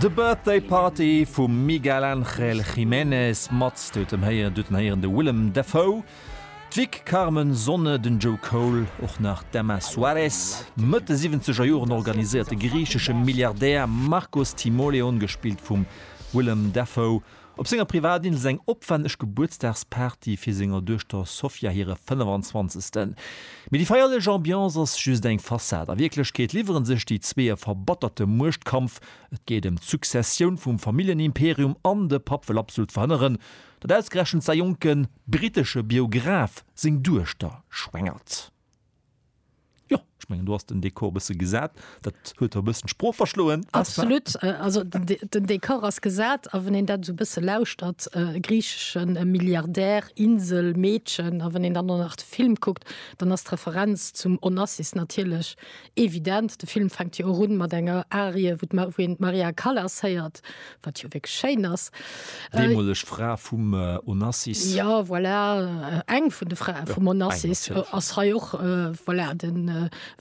The Birthday Party vum Miguel Ángel Jiménez mat, Dir hutt em héieren, Dir hutt en héieren, de Willem Dafoe, d'Vic Carmen Sonne, den Joe Cole, och nach d'Emma Suárez, Mëtt de siwwenzeger Joren organiséiert de griichesche Milliardär Marcos Timoleon, gespillt vum Willem Dafoe, Op senger Privatinsel eng opwenneg Gebuertsdagsparty fir senger Duechter Sofia hire 25. Mee déi feierlech Ambiance ass just eng Fassad. A Wierklechkeet liwwere sech déi zwee e verbatterte Muechtkampf. Et geet ëm d'Successioun vum Familljenimperium an de Papp wëll absolut verhënneren, datt ausgerechent säi jonke brittesche Biograf seng Duechter schwängert. Jo, ech mengen do ass den Dekor e bësse gesat. Dat huet der e bëssen d'Sprooch verschloen. Absolut, also den Dekor ass gesat a wann een dat esou e bësse lauschtert, e griicheschen Milliardär, Insel, Meedchen a wann een dann och nach de Film kuckt, dann ass d'Referenz zum Onassis natierlech Evident, de Film fänkt jo och un mat enger Arie, wou een d'Maria Callas héiert, wat jo wierklech schéin ass. Deemoleg Fra vum Onassis. Jo, voilà, eng vun de Frae vum Onassis ass hei och. Voilà,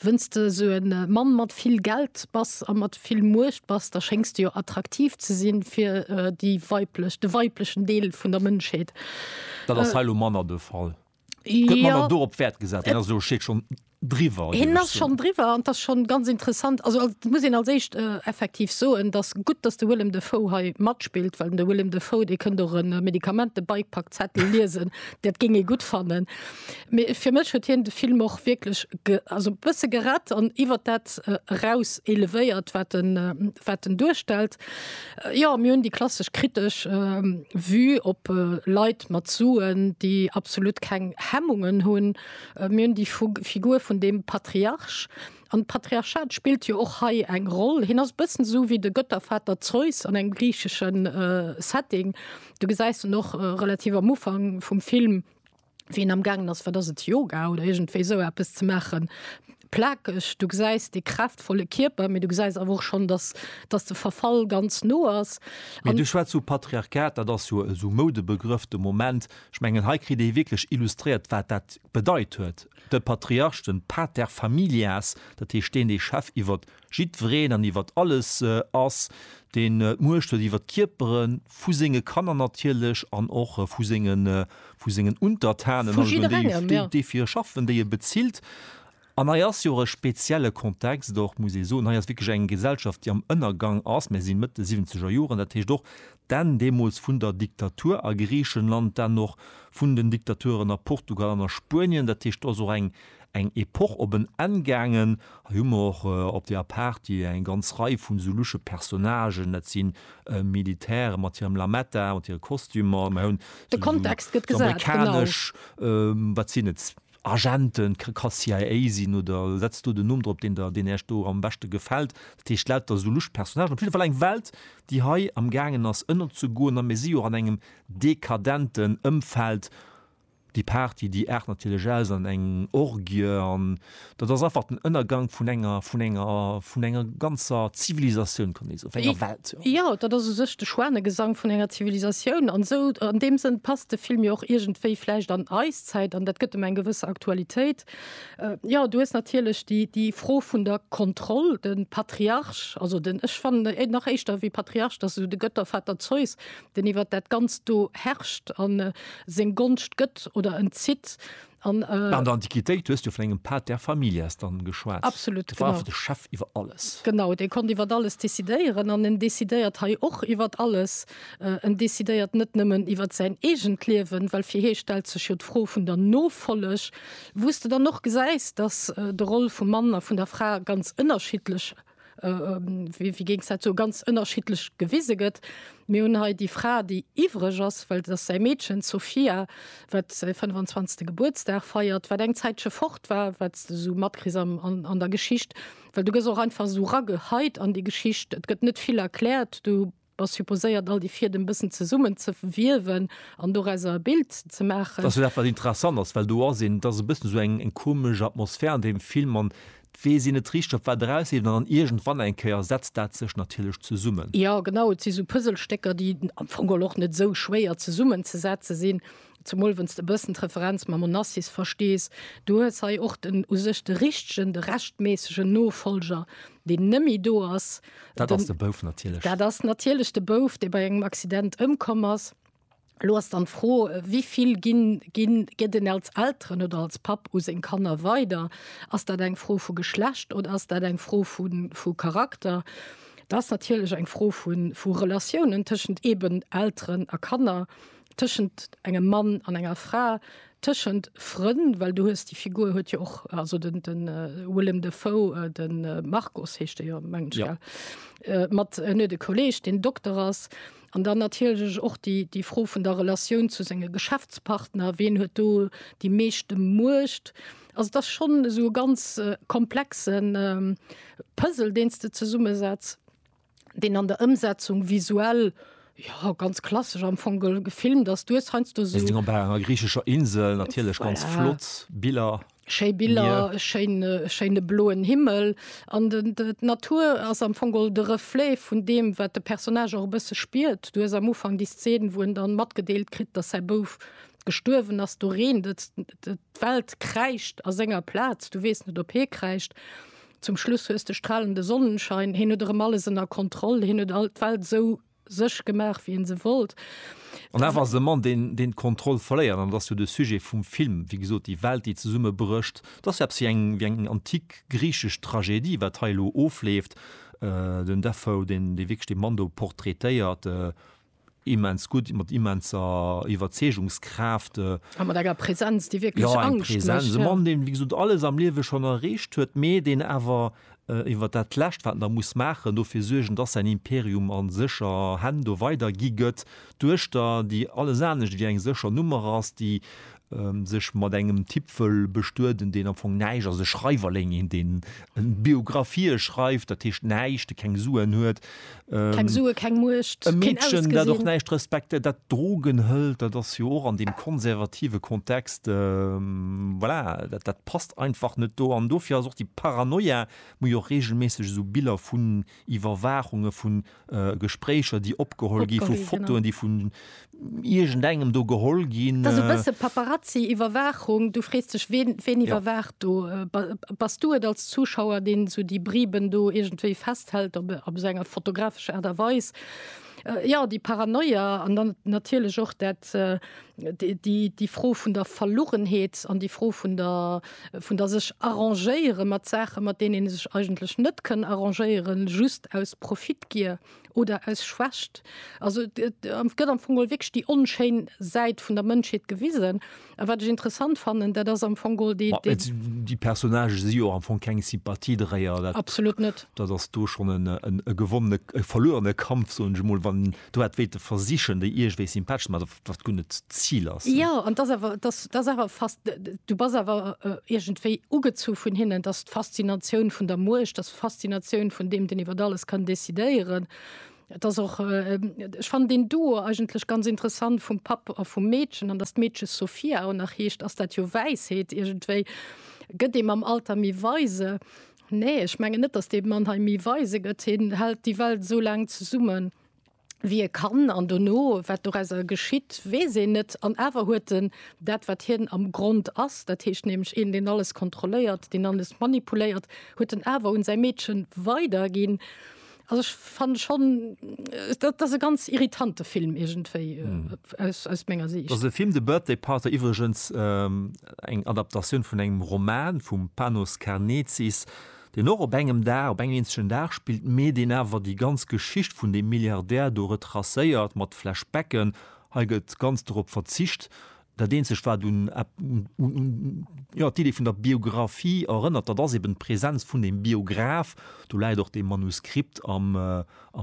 wann s de esou e Mann mat vill Geld bass a mat vill Muecht bass, da schéngs de jo attraktiv ze sinn fir de weiblechen Deel vun der Mënschheet. Dat ass hei elo manner de Fall. Ja. do op Wert gesat äh, also steet schon driwer hin ass schon driwer an das schon ganz interessant also als, muss ihn als echt äh, effektiv so en das gut dass de Willem de Fo hei matspielt weil de Willem de Fo de kënnt doch en äh, Medikament de Bikepack Zettel lesen dat ging e gut fannen fir mech huet hien de Film och wirklich ge, also bësse gerett an iwwer dat äh, raus elevéiert wat den äh, wat den durchstellt Jo, mir hunn déi klassesch kritesch Vue op Leit mat Suen, déi absolut keng Hemmungen hunn. Mir hunn déi Figur vun deem Patriarch. An d'Patriarchat spillt jo och hei eng Roll. Hien ass e bëssen esou wéi de Göttervater Zeus an engem griichesche Setting. Du gesäis en och relativ am Ufank vum Film, wien am gangen ass wat ass et Yoga oder irgendwéi esou eppes ze maachen plakeg du gesäis dee kräftvolle Kierper mee du gesäis awer och schonn dass dass de Verfall ganz no ass an. Du schwätz vu Patriarchat, dat ass jo esou Moudebegrëff de Moment. Ech mengen hei kritt ee wierklech illustréiert wat dat bedeit huet de Patriarch, de pater familias, dat heescht deen dee Chef iwwert Jiddwereen an iwwert alles ass, deen d'Muecht huet iwwert d'Kierpere vu senge Kanner natierlech an och vu sengen, vu sengen Untertanen, also vun deenen, déi, déi fir e schaffen, déi e bezilt. An hei ass jo och e spezielle Kontext och, muss ee soen, hei ass wierklech eng Gesellschaft, déi am Ënnergang ass. Mir si Mëtt de siwwenzeger Joren, dat heescht och, D'Enn deemools vun der Diktatur a Griichenland, d'Enn och vun den Diktaturen a Portugal an a Spuenien. Dat heescht, do ass och eng eng Epoch op en Enn gaangen. Hei hu mer och op deeër Party eng ganz Rei vun esou luche Personnagen, dat si Militäre mat hirem Lametta, mat hire Kostümer, mer hunn esou amerikanesch, wat sinn et? Agenten, ka ka CIA sinn oder setz do den Numm drop deen der deen Äech do am beschte gefällt. Dat heescht lauter sou lusch Personnagen. Op jidde Fall eng Welt déi hei am gaangen ass ënnerzegoen a mir si jo och an engem dekadenten Ëmfeld. Déi Party déi aart natierlech aus an eng Orgie an dat ass einfach den Ënnergank vun enger vun enger vun enger ganzer Zivilisatioun kann ee soen, vun enger Welt jo. Jo, dat ass u sech de Schwanegesang vun enger Zivilisatioun an esou an deem Sënn passt de Film jo och iergendwéi vläicht an eis. Zäit an dat gëtt em eng gewësse Aktualitéit. Äh, jo, du hues natierlech déi, déi Fro vun der Kontroll, de Patriarch, also den, ech fannen e nach éischter wéi Patriarch, dat ass esou de Gëttervater Zeus, deen iwwer dat Ganzt do herrscht an äh, seng Gonscht gëtt oder entzitt. An äh, An der Antiquitéit hues du vun engem pater familias dann geschwat. absolut, Dat war genau. einfach de Chef iwwer alles. Genau, dee konnt iwwer alles decidéieren an en decidéiert hei och iwwer alles. En decidéiert net nëmmen iwwer säin eegent Liewen, well fir hie stellt sech jo d'Fro vun der Nofolleg, wou s de dann och gesäis, datt de Roll vum Mann a vun der Fra ganz ënnerschiddlech, wéi géings dat soen, ganz ënnerschiddlech gewise gëtt. Mir hunn hei déi Fra, déi iwwreg ass, well et ass säi Meedchen, d'Sofia, wat säi 25. Gebuertsdag feiert, wat eng Zäitche fort war, wat s de esou matkriss an der Geschicht, well du gëss och einfach esou rageheit an déi Geschicht, et gëtt net vill erkläert, du. Ass supposéiert all déi Fiedem bëssen zesummen ze wiewen an dorauser e Bild ze maachen. Dass jo dat wat interessant ass, well do ass een, et ass e bëssen esou eng eng komesch Atmosphär an deem Film an et weess een net richteg op wat erausleeft an dann iergendwann eng Kéier setzt dat sech natierlech zesummen. Jo genau, et si sou Puzzlestécker déi am Fong geholl och net esou schwéier zesummen ze setze sinn, Zemol wann's de e bëssen d'Referenz mam Onassis verstees, du hues hei och den u sech de richtegen, de rechtméissegen Nofolger, deen nëmmi do ass, Dat ass de Bouf natierlech. Dat ass natierlech de Bouf, dee bei engem Accident ëmkomm ass. Elo ass dann d'Fro, wéi vill ginn, ginn, gëtt en als Elteren oder als Papp u seng Kanner weider? Ass dat eng Fro vu Geschlecht oder ass dat eng Fro vu vu Charakter? Dat ass natierlech eng Fro vu vu Relatiounen tëschent eeben Elteren a Kanner. tëschent engem Mann an enger Fra, tëschent Frënn, well du hues déi Figur huet jo och also den den Willem Dafoe, den Markus heescht dee jo meng ech, gell? Ja. Mat en huet e Kolleeg, deen Dokter ass. An dann natierlech och déi déi Fro vun der Relatioun zu senge Geschäftspartner, ween huet do déi meeschte Muecht? Also et ass schonn esou e ganz komplexen Puzzle, deen s de zesummesetz. deen an der Ëmsetzung visuell ja ganz klassesch am Fong gefilmt ass. Du hues heiansdo esou. Sinn op enger griichescher Insel, natierlech ganz ja. flott Biller. Schéi Biller, e schéine, schéine bloen Himmel an den, de, d'Natur ass am Fongol de Reflet vun deem, wat de Personnage och e bësse spiert. Du hues am Ufang déi Szen, wou en dann matgedeelt kritt, datt säi Bouf gestuerwen ass. Do reent et, d'Welt kräischt a senger Plaz, du weess net, ob hie kräischt. Zum Schluss hues de stralende Sonnenschein, hien huet erëm alles ënner Kontroll, hien huet all d'Welt esou sech gemaach, wéi en se wollt. An awer ass et e Mann, deen deen d'Kontroll verléiert, an dat ass jo de Sujet vum Film, wéi gesot, déi Welt, déi zesummebrécht. Et ass jo eppes wéi eng wéi eng antik griichesch Tragedie, wat hei elo ofleeft. Den Dafoe, deen dee wierklech dee Mann do portraitéiert. immens gutt, mat immenser Iwwerzeegungskraaft. A mat enger Präsenz, déi wierklech Angscht mécht. Jo, eng Präsenz, e Mann, deen, wéi gesot, alles am Liewe schonn erreecht huet, mee deen awer iwwer dat Lescht, wat en da muss maachen, dofir suergen, dass säin Imperium a sécher Hänn do weidergi gëtt, d'Duechter, déi alles anescht wéi eng sécher Nummer ass, déi sech mat engem Typ wëll bestueden, deen am Fong näischt ass, e Schreiwerling, een deen Biographië schreift, dat heescht näischt, dee keng Suen huet, keng Sue, keng Muecht, e Meedchen, dat och näischt respektéiert, dat Drogen hëlt, dat ass jo och an deem konservative Kontext, voilà, dat dat passt einfach net do. An dofir ass och déi Paranoia, wou jo och reegelméisseg esou Biller vun Iwwerwaachunge vun Äh, Gespréicher, déi opgeholl gi vu Fotoen, déi vun Igent engem do geholl ginn. Dat e äh, bësse Paparazzi Iwwerwaachung, du frees dech wen, wen iwwerwaacht ja. do. Äh, bas du et als Zuschauer, deen zu so déi Briben do egentéi festhält op, op eso enger fotografescher Aart a Weis. Äh, ja, déi Paranoia an dann natierlech och dat. Äh, Déi Fro vun der Verlugenheet an déi Fro vun der sech arrangéiere mat Saache mat deenen ee sech eigentlech net kënn arrangéieren, just aus Profitgier oder aus Schwächt. Also et gëtt am Fong geholl wierklech déi onschéin Säit vun der Mënschheet gewisen. A wat ech interessant fannen, dat ass am Fong geholl déi. Déi Personnagë si jo am Fong keng Sympathiedréier. Absolut net. Dat ass do schonn e gewonnene, e verluerene Kampf, soen ech emol, wann do dat wéilte versichen déi iergendwéi sympathesch ze maachen. wat gun net Ziel ass. Ja an das awer das das awer fast du bas awer äh, irgendwéi ugezu vun hinnen, dass d'Faszinatioun vun der Muecht, dass Faszinatioun vun dem den iwwer alles kann decidéieren. Das och äh, ich fand den Duo eigentlech ganz interessant vum Papp a vum Meedchen an dass d'Meedche Sophia ou nach heescht, ass dat jo Wäisheet irgendwéi gëtt ee mam Alter méi weise. Nee ech mengen net, dass dee Mann hei méi weise gëtt, hien hält déi Welt esou laang zesummen, wéi e kann an dono wat dorauser geschitt, weess een net. An awer huet en dat, wat hien am Grond ass, dat heescht nämlech een, deen alles kontrolléiert, deen alles manipuléiert, huet en awer un säi Meedchen weiderginn. Also ech fanne schonn, dat ass e ganz irritante Film iergendwéi aus menger Siicht. Dat ass e Film, The Birthday Party, iwwregens eng Adaptatioun vun engem Roman vum Panos Karnezis, deen och op engem Dag, op engem eenzegen Dag spillt, mee deen awer déi ganz Geschicht vun deem Milliardär do retracéiert, mat Flashbacken. Hei gëtt ganz dorop verzicht. Dat eenzegt, wat un, jo, d'Idee vun der Biographie erënnert, dat ass eben d'Präsenz vun deem Biograf. Do läit och dee Manuskript am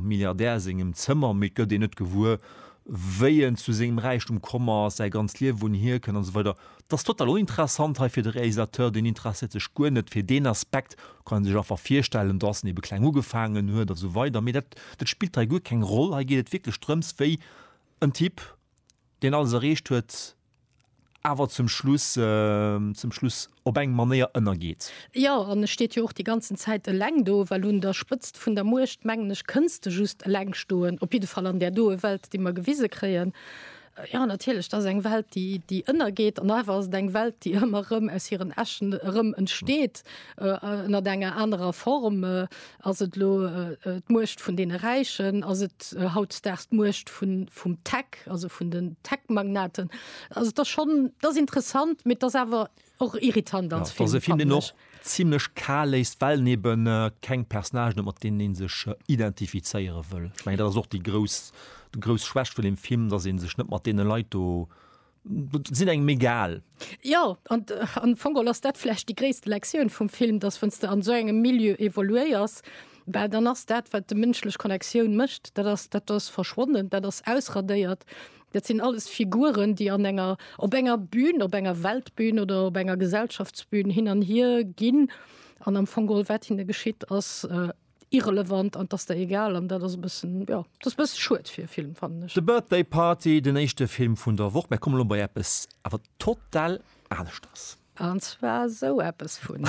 Milliardär sengem Zëmmer, mee et gëtt een net gewuer, wéi en zu sengem Räichtum komm ass, säi ganzt Liewen, wou en hierkënnt an esou weider. Et ass total uninteressant hei fir de Realisateur, deen interesséiert sech guer net fir deen Aspekt, kann ee sech einfach virstellen, datt en ebe kleng ugefaangen huet a sou weider, mee dat, dat spillt hei guer keng Roll. Hei geet et wierklech drëms, wéi en Typ, deen alles erreecht huet, awer zum Schluss, zum Schluss op eng Manéier ënnergeet. Jo, an e steet jo och déi ganzen Zäit eleng do, well un der Spëtzt vun der Muecht, mengen ech, kënns de just eleng stoen, op jidde Fall an där doe Welt, déi mer gewise kréien. Jo, natierlech, dat ass eng Welt, déi, déi ënnergeet an awer ass et eng Welt, déi ëmmer erëm aus hiren Äschen erëm entsteet, ënnert enger anerer Form. Ass et elo d'Muecht vun deene Räichen, ass et hautzedaags d'Muecht vun, vum Tech, also vun den Tech-Magnaten. Also et ass schonn, dat ass interessant, mee et ass awer. Och irritant als Film. Dass e Film een och zimlech kal léisst, well en eben keng Personnagen huet, mat deenen ee sech identifizéiere wëll. Ech mengen, dat ass och déi grouss, déi grouss Schwächt vun deem Film, dass ee sech net mat deene Leit do, déi sinn engem egal. Jo, an am Fong geholl ass dat vläicht déi gréisste Lektioun vum Film, dass wann s de an esou engem Milieu evoluéiers, bah dann ass dat, wat de mënschlech Connektioun mécht, dat ass, dat ass verschwonnen, dat ass ausradéiert. Dat sinn alles Figuren, déi an enger, op enger Bühn, op enger Weltbühn oder op enger Gesellschaftsbühn hin an hier ginn. An am Fong geholl, wat hinne geschitt, ass äh, irrelevant an dass der egal. An dat ass e bëssen, ja, dat ass e bësse schued fir e Film, fannen ech. The Birthday Party, den éischte Film vun der Woch. Mir kommen elo bei eppes awer total aneschters. An zwar esou eppes vun.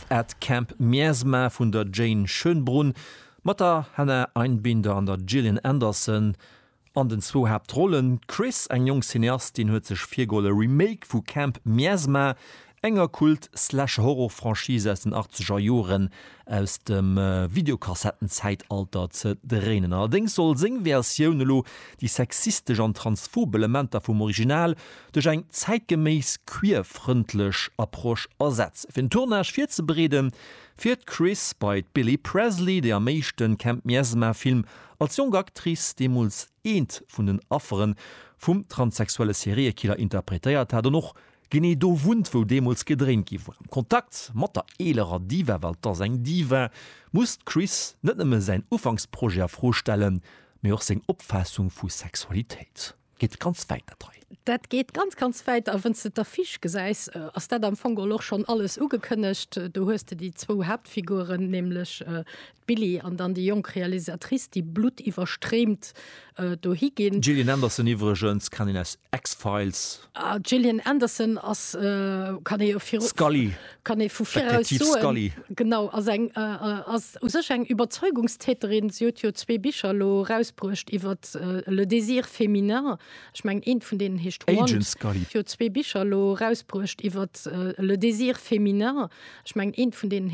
At Camp Miasma vun der Jane Schönbrunn, mat der Hannah Einbinder an der Gillian Anderson an den zwou Haaptrollen. D'Chris, eng jonk Cineastin, huet sech virgeholl e Remake vu Camp Miasma, enger Kult-Slash-Horror-Franchise aus den achtzeger Joren aus dem Videokassetten-Zäitalter ze dréinen. Allerdéngs soll seng Versioun elo déi sexistesch an transphob Elementer vum Original duerch eng zäitgeméiss queer-frëndlech Approche ersetzt. Fir den Tournage virzebereeden, fiert d'Chris bei d'Billie Presley, déi am éischten Camp Miasma Film als jonk Actrice deemools eent vun den Affere vum transsexuelle Seriekiller interpretéiert hat an och genee do wunnt, wou deemools gedréint gi war. Am Kontakt mat der eelerer Diva, well 't ass eng Diva, muss d'Chris net nëmme säin Ufanksprojet a Fro stellen, mee och seng Opfaassung vu Sexualitéit. Geet ganz wäit dat hei. Dat geet ganz ganz wäit a wënns de d'Affiche gesäis ass dat am Fong geholl och schonn alles ugekënnegt. Do hues de déi zwou Haaptfiguren, nämlech d'Billy an dann déi jonk Realisatrice, déi bluttiwwerstreemt dohi ginn. D'Gillian Anderson iwwregens kennt een aus X-Files. D'Gillian Anderson ass, kann ee jo viru. Scully. kann ee vu viraus soen, genau, ass eng, ass u sech eng Iwwerzeugungstäterin. Si huet jo zwee Bicher elo erausbruecht iwwer le désir féminin, ech mengen eent vun deenen heescht Want. Agent Scully. Si huet zwee Bicher elo erausbruecht iwwer le désir féminin, ech mengen eent vun deenen.